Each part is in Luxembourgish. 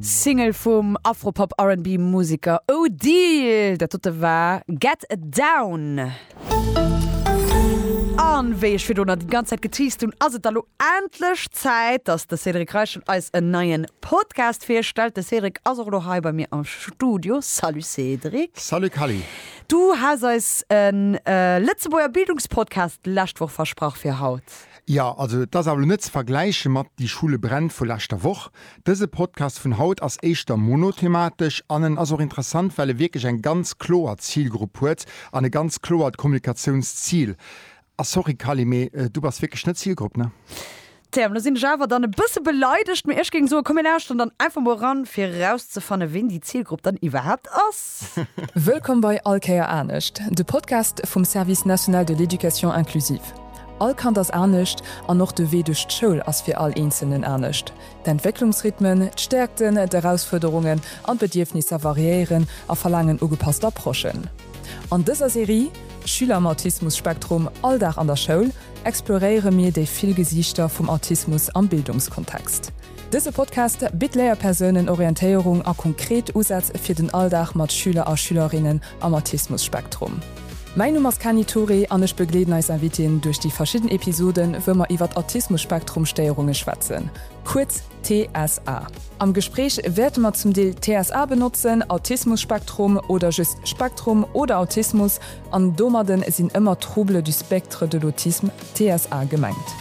Single vum Afropop-R&B-Museker Odile, dat dote war Get Down. An wéi ech virdoner déi ganz Zäit geteased hunn, ass et da lo endlech Zäit, dass de Cédric Reichel eis en neien Podcast virstellt. De Cédric ass och lo hei bei mir am Studio. Salut Cédric. Salut Kally. Du has eis en Lëtzebuerger Bildungspodcast d'lescht Woch versprach fir haut. Jo, also et ass awer elo net ze vergläiche mat Die Schule brennt vu leschter Woch. Dëse Podcast vun haut ass éischter monothematesch an en ass och interessant, well e wierklech eng ganz kloer Zilgrupp huet an e ganz kloert Kommunikatiounszil. A sorry Kally, mee du bass wierklech net d'Zilgrupp, ne? Tja, lo sinn ech awer dann e bësse beleidegt, mee ech géing soen, komm mir lauschteren dann einfach mol eran, fir erauszefannen, ween déi Zilgrupp dann iwwerhaapt ass. Wëllkomm bei All Kéier anescht, de Podcast vum Service national de l'éducation inclusive. All Kand ass anescht an och de Wee duerch d'Schoul ass fir all Eenzelnen anescht. D'Entwécklungsrhythmen, d'Stäerkten, d'Erausfuerderungen an d'Bedierfnisser variéieren a verlaangen ugepasst Approchen. An dëser Serie Schüler am Autismus-Spektrum, Alldag an der Schoul exploréiere mir déi vill Gesiichter vum Autismus am Bildungskontext. Dëse Podcast bitt Léierpersounen Orientéierung a konkret Usätz fir den Alldag mat Schüler a Schülerinnen am Autismus-Spektrum. Mäin Numm ass Kani Touré an ech begleeden eis Invitéen duerch déi verschidden Episoden, wou mer iwwert Autismus-Spektrum-Stéierunge schwätzen, kuerz TSA. Am Gespréich wäerte mer zum Deel TSA benotzen, Autismus-Spektrum oder just Spektrum oder Autismus, an domadde sinn ëmmer Troubles du spectre de l'autisme, TSA, gemengt.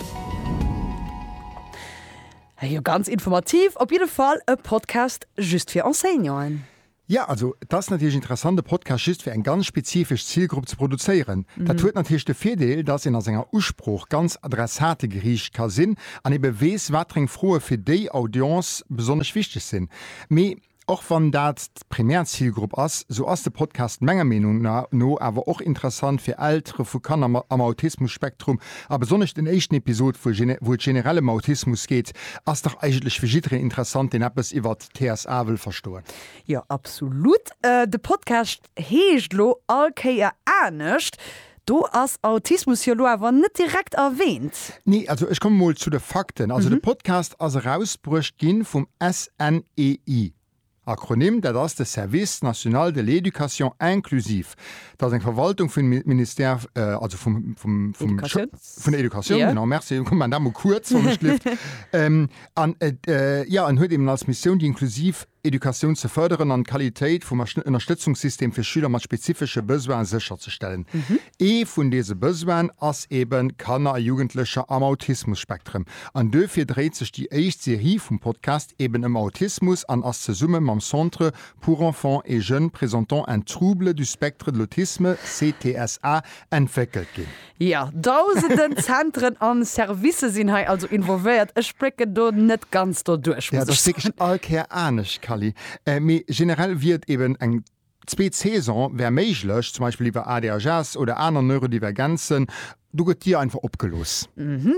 Hei jo ganz informativ, op jidde Fall e Podcast just fir Enseignanten. Jo, also et ass natierlech interessant e Podcast just fir eng ganz spezifesch Zilgrupp ze produzéieren. Dat huet natierlech de Virdeel, datt een a senger Usprooch ganz adressategeriicht ka sinn an ebe weess, watereng Froe fir déi Audience besonnesch wichteg sinn. Mee och wann dat d'Primärzilgrupp ass, sou ass de Podcast menger Meenung no awer och interessant fir Eltere vu Kanner mat am Autismus-Spektrum. A besonnesch den éischten Episod, wou et generell ëm Autismus geet, ass dach eigentlech fir jidderen interessant, deen eppes iwwer TSA wëll verstoen. Jo, absolut. De Podcast heescht elo all Kéier anescht. Do ass Autismus jo elo awer net direkt erwähnt. Nee, also ech komme mol zu de Fakten. Also de Podcast ass erausbruecht gi vum SNEI, Akronym, dat ass de Service national de l'éducation inclusive. Dat ass eng Verwaltung vum Ministère, also vum, vum, vum, vun der Educatioun, genau, merci, komm, maan dat mol kuerz, wann et gleeft. An et, jo, en huet eben als Missioun, déi inklusiv Educatioun ze fërderen an d'Qualitéit vum Ënnerstëtzungssystem fir Schüler mat spezifesche Besoine sécherzestellen. Ee vun dese Besoine ass eben Kanner a Jugendlecher am Autismus-Spektrum. An duerfir dréit sech déi éischt Serie vum Podcast eben ëm Autismus an ass zesumme mam Centre pour enfants et jeunes présentant un trouble du spectre de l'autisme, CTSA, entwéckelt ginn. Jo, dausenden Zentren a Servicë sinn hei also involvéiert. Ech blécken do net ganz doduerch, muss ech soen. Ass all Kéier anescht, Kally. Mee generell wier et eeben eng zweet Saison wär méiglech, zum Beispill iwwer ADHS oder aner Neurodivergenzen. Do gëtt Dir einfach opgelooss.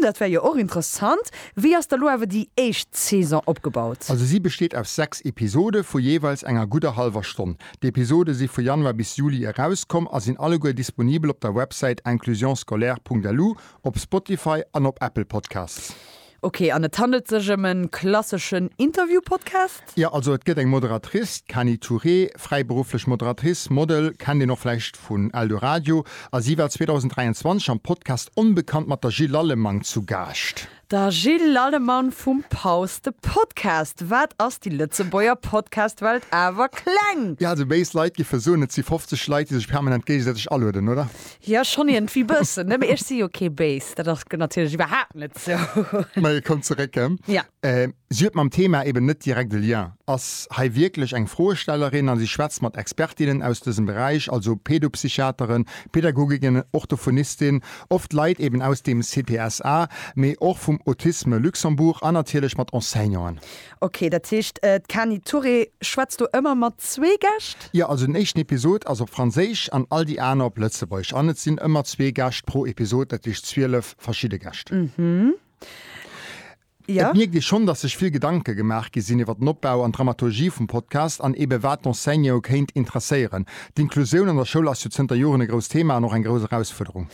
Dat wär jo och interessant. Wéi ass da lo awer déi éischt Saison opgebaut? Also si besteet aus sechs Episode vu jeeweils enger gudder hallwer Stonn. D'Episode si vu Januar bis Juli erauskomm a sinn alleguer disponibel op der Websäit inclusionscolaire.lu, op Spotify an op Apple Podcasts. Ok, an et handelt sech ëm e klasseschen Interview-Podcast? Jo, also et gëtt eng Moderatrice, d'Kani Touré, fräiberufflech Moderatrice, Model, kennt een och vläicht vun Eldoradio, a si war 2023 am Podcast Onbekannt mat der Jill Lallemang zu Gaascht. Da Jill Lallemann vum Paus de Podcast, wat ass déi Lëtzebuerger Podcast-Welt awer kleng! Jo, also béis Leit giffe soen, et si 50 Leit, déi sech permanent géigesäiteg alueden, oder? Jo, schonn iergendwéi bëssen, ne? Mee ech si jo kee béis, dat ass natierlech iwwerhaapt net sou. Mä e koum zeréck, ë? Jo. Si huet mam Thema eben net direkt e Lien, ass hei wierklech eng Froestellerin a si schwätzt mat Expertinnen aus dësem Beräich, also Pädopsychiateren, Pädagoginnen, Orthophonistinnen, oft Leit eben aus dem CPSA, mee och vum Autisme Luxembourg an natierlech mat Enseignanten. Ok, dat heescht, d'Kani Touré schwätzt do ëmmer mat zwee Gäscht? Jo, also den éischten Episod ass op Franséisch an all déi aner op Lëtzebuergesch an et sinn ëmmer zwee Gäscht pro Episod, dat heescht 12 verschidde Gäscht. Et mierkt ee schonn, dass sech vill Gedanke gemaach gi sinn iwwer den Opbau an d'Dramaturgie vum Podcast an eebe wat d'Enseignantë kéint interesséieren. D'Inklusioun an der Schoul ass jo zënter Joren e grousst Thema an och eng grouss Erausfuerderung.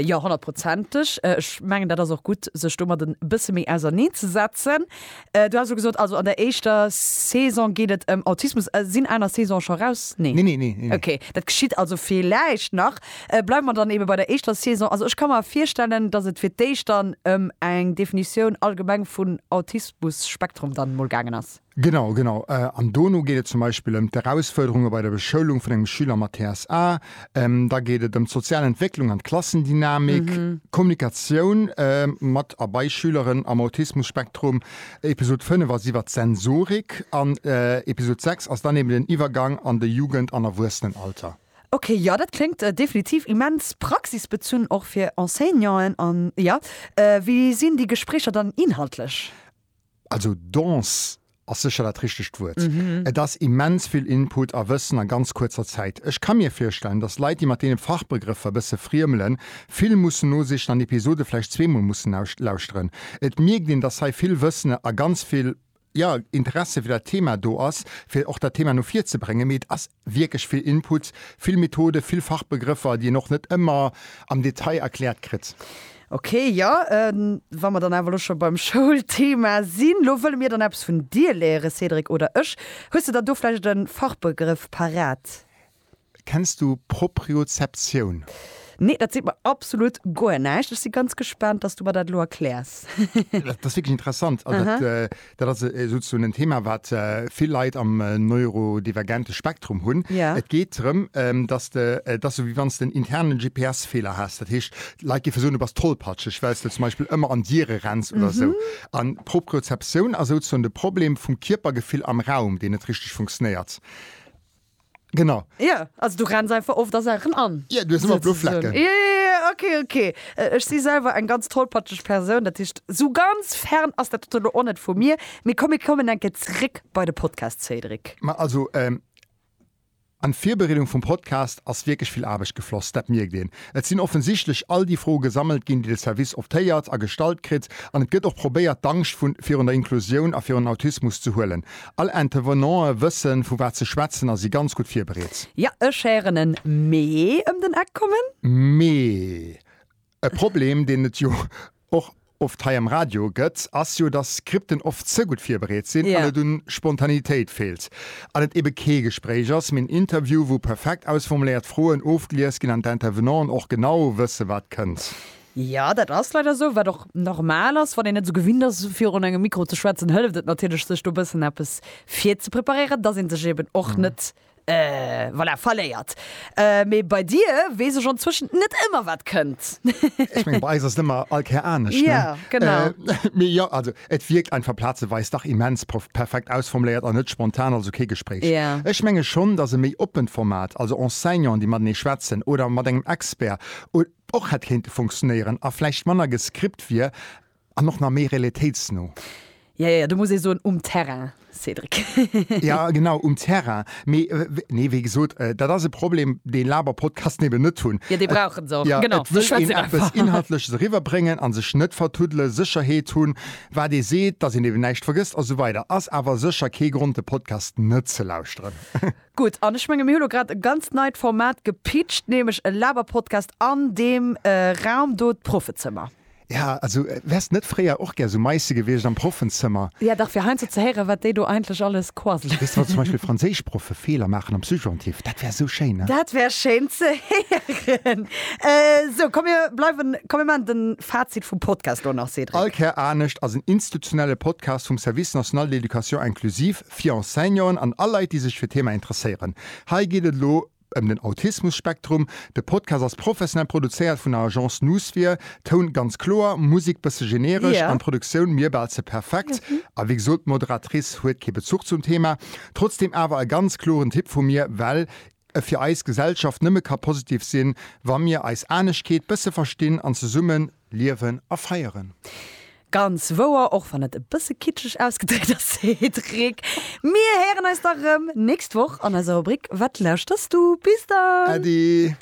Jo, honnertprozenteg. Ech mengen, dat ass och gutt, sech domat e bësse méi auserneen ze setzen. Du haas elo gesot, also an der éischter Saison geet et ëm Autismus. Sinn aner Saisone scho raus? Nee. Nee, nee, nee. Okay, dat geschitt also villäicht nach. Bleiwe mer dann eebe bei der éischter Saison. Also ech ka mer virstellen, datt et fir d'éischt dann ëm eng Definitioun allgemeng vun Autismus-Spektrum dann emol gaangen ass. Genau, genau. An dono geet et zum Beispill ëm d'Erausfuerderunge bei der Beschoulung vun engem Schüler mat TSA. Da geet et ëm d'sozial Entwécklung an d'Klassendynamik, d'Kommunikatioun mat a bei Schüleren am Autismus-Spektrum. Episod 5 ass iwwert d'Sensorik an Episod 6 ass dann eeben den Iwwergang an de Jugend an Erwuessenenalter. Ok, jo, dat kléngt definitiv immens praxisbezunn, och fir Enseignanten. An jo, wéi sinn déi Gespréicher dann inhaltlech? Also dens ass sécher dat richtegt Wuert. Et ass immens vill Input a Wëssen a ganz kuerzer Zäit. Ech ka mir virstellen, dass Leit, déi mat deene Fachbegrëffer e bësse friemelen, vill mussen nosichen an Episode vläicht zweemol mussen lauschteren. Et mierkt een, dass hei vill Wëssen a ganz vill jo, Interesse fir dat Thema do ass, fir och dat Thema no vir ze bréngen. Mee et ass wierklech vill Input, vill Methode, vill Fachbegrëffer, déi een och net ëmmer am Detail erkläert kritt. Okay, jo, wa mer dann awer elo scho beim Schoulthema sinn, elo wëlle mir dann eppes vun dir léieren, Cédric, oder ech. Hues de dann do vläicht e Fachbegrëff parat? Kenns du Propriozeptioun? Nee, dat seet mer absolut guer näischt. Ech si ganz gespaant, dass du mer dat elo erkläers. Dat ass wierklech interessant. Dat ass souzesoen en Thema, wat vill Leit am neurodivergente Spektrum hunn. Et geet drëm, dass de, et ass esou, wéi wann s de en interne GPS-Feeler häss. Dat heescht, Leit géife soen, du bass tollpatscheg, well s de zum Beispill ëmmer an Diere renns oder esou. An d'Propriozeptioun ass souzesoen de Problem vum Kierpergefill am Raum, deen net richteg funktionéiert. Genau. Ja, also du renns einfach oft der Saachen an. Ja, du hast immer blo Flecken. Ja, ja, ja, okay, okay. Äh, Ech si selwer eng ganz tollpatscheg Persoun, dat heescht, so ganz fern ass dat dote lo och net vu mir. Mee komm, mir kommen eng Kéier zréck bei de Podcast, Cédric. Ma also, ähm, an d'Virbereedung vum Podcast ass wierklech vill Aarbecht gefloss, dat mierkt een. Et sinn offensichtlech all déi Froe gesammelt ginn, déi de Service optéiert a gestallt kritt, an et gëtt och probéiert, d'Angscht vun virun der Inklusioun a virun Autismus ze huelen. All Intervenanten wëssen vu wat se schwätzen a si ganz gutt virbereet. Ja, ech héieren en Mee ëm den Eck kommen. Mee e Problem, deen et jo och oft hei am Radio gëtt, ass jo, dass Skripten oft ze gutt virbereet sinn an et u Spontanitéit feelt an et ebe kee Gespréich ass, mee en Interview, wou perfekt ausformuléiert Froen ofgelies ginn an d'Intervenanten och genau wësse wat kënnt. Jo, dat ass leider esou, wat och normal ass. Wann een net esou gewinnt ass, virun engem Mikro ze schwätzen, hëlleft et natierlech, sech do e bëssen eppes virzepreparéieren, dass ee sech eeben och net, voilà, verléiert. Mee bei dir weess ech anzwëschen net ëmmer, wat kënnt. Ech mengen, bei eis ass et ëmmer all Kéier anescht, ne? Jo, genau. Mee jo, also et wierkt einfach plazeweis dach immens perfekt ausformuléiert an net spontan, also kee Gespréich. Jo. Ech menge schonn, dass e méi oppent Format, also Enseignanten, déi matenee schwätzen oder mat engem Expert, och hätt kéinte funktionéieren a vläicht manner gescript wier an och nach méi realitéitsno. Jo, jo, do muss ee soen, um Terrain, Cédric. Jo, genau, um Terrain. Mee, nee, wéi gesot, dat ass e Problem, dee Laber-Podcasten eben net hunn. Jo, dee brauchen se och, genau. Et wëll een eppes Inhaltleches eriwwerbréngen a sech net vertuddelen, Sécherheet hunn, wat ee seet, dass een eben näischt vergësst a sou weider. Ass awer sécher kee Grond, de Podcast net ze lauschteren. Gutt, an ech menge mir hunn elo grad e ganz neit Format gepitcht, nämlech e Laberpodcast an deem Raum do, d'Proffezëmmer. Ja, also wäers net fréier och gär sou Meisse gewiescht am Proffenzëmmer? Jo dach, fir heiansdo ze héieren, wat déi do eigentlech alles quasselen. Weess de, wann zum Beispill Franséischproffe Feeler maachen am Subjonctif, dat wär esou schéin, ne? Dat wär schéin ze héieren. Sou, komm mir bleiwen, komm mir maachen de Fazit vum Podcast elo nach, Cédric. All Kär anescht ass en institutionelle Podcast vum Service national d'éducation inclusive, fir Enseignanten an all Leit, déi sech fir d'Thema interesséieren. Hei geet et elo ëm den Autismus-Spektrum. De Podcast ass professionell produzéiert vun der Agence Noosphir, Toun ganz kloer, Musik bësse generesch an Produktioun mir bal ze perfekt. A wéi gesot, d'Moderatrice huet kee Bezuch zum Thema, trotzdeem awer e ganz kloren Tipp vu mir, well e fir eis Gesellschaft nëmme ka positiv sinn, wa mir eis Aneschkeet bësse verstinn an zesumme liewen a feieren. Ganz wouer, och wann et e bësse kitscheg ausgedréckt ass, Cédric. Mir héieren eis da rëm nächst Woch an eiser Rubrik Wat lauschterst du? Bis dann! Äddi!